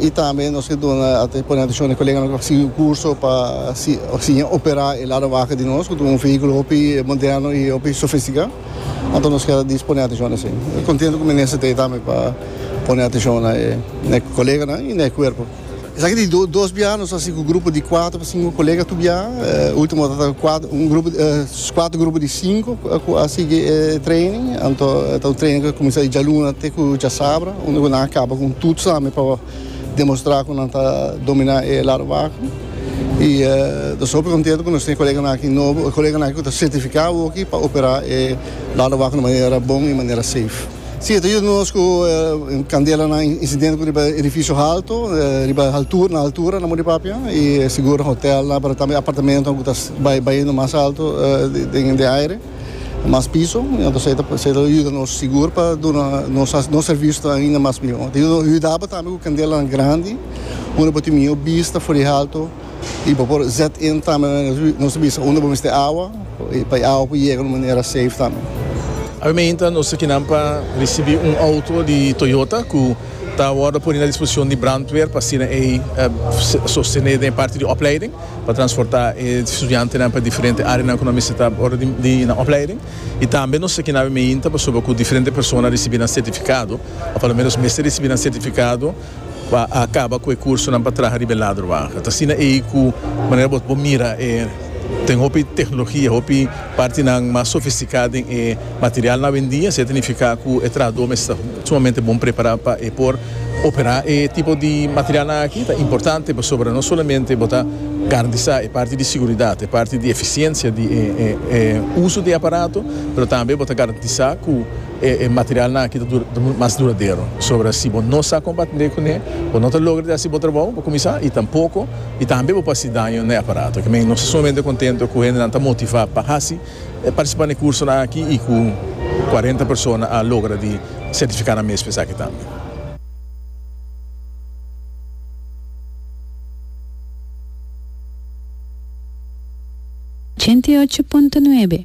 Y tambe nos ke duna pone atencion e coleganan cu a sigui un curso pa siña opera e lado baha di nos cu ta un vehiculo hopi moderno y hopi sofistica. Anto nos kier a dispone atencion na esey. E contento cu minister ta ey tambe pa pone atencion na e coleganan y na e cuerpo. Esaki di dos biaha nos a hasi cu grupo di cuatro pa cinco colega tur biaha. Ultimo ta ta un grupo di. Skuad grupo di sinku ku a sigui e training anto ta un training ku a kuminsá di djaluna te ku djasabra unda ku nan a kaba ku un tuts tambe pa demostrá ku nan ta dominá e lado baku i ta super kontentu ku nos tin e koleganan aki nobo e koleganan aki ku ta sertifiká oki pa operá e lado baku di manera bon i manera safe. Si, e ta yuda nos ku kandelanan i insidente riba e edifisio halto, riba haltura, na haltura nan muna di papia, i e sigur hotelnan, pero tambe apartamentonan ku ta bai baiendo mas alto den den aire, mas piso, entonces esei ta yuda nos sigur pa duna nos sa nos servicio ta ainda mas mihó. Ta yuda nos, ta yudaba tambe ku kandelanan grandi, unda bo tin mihó bista for di halto. Y bo por zet in tambe na nos bisa unda bo mester awa, pa e awa por yega na un manera safe tambe. Awe mainta nos ta kinan pa ricibi un auto di Toyota cu ta wordo poni na disposicion di brandweer pa asina ey sostene den e parti di opleiding pa transporta e studiantenan pa diferente areanan cu nan mester ta ora di nan opleiding. Y tambe nos ta kinan awe mainta pasobra cu diferente persona ricibi nan certificado, o pa lo menos mester ricibi nan certificado. Pa a kaba ku e kursonan pa traha riba e ladro baha. Ta asina ei ku manera bo bo mira e ten hopi teknologia, hopi partinan mas sofistikado den e material awendia. Siat a nifiká ku e trahadó mester ta sumamente bon prepará pa e por operá e tipo di materialnan aki. Ta importante pasobra no solamente bo ta garantisá e parti di seguridat, e parti di efisiensia di e uso di e aparato, pero tambe bo ta garantisá ku. E materialnan aki ta munt mas duradero. Sobra si bo no sa kompatndé kuné, bo no ta logra di hasi bo trabou pa kuminsá i tampoko i tambe bo pa hasi daño na e aparato. Kimin nos ta sumamente kontentu ku hendenan ta motivá pa hasi e partisipá na e kursonan aki i ku kuarenta persona a logra di sertifiká nan mes pa esaki tambe. Ochenta i ocho punto nuebe.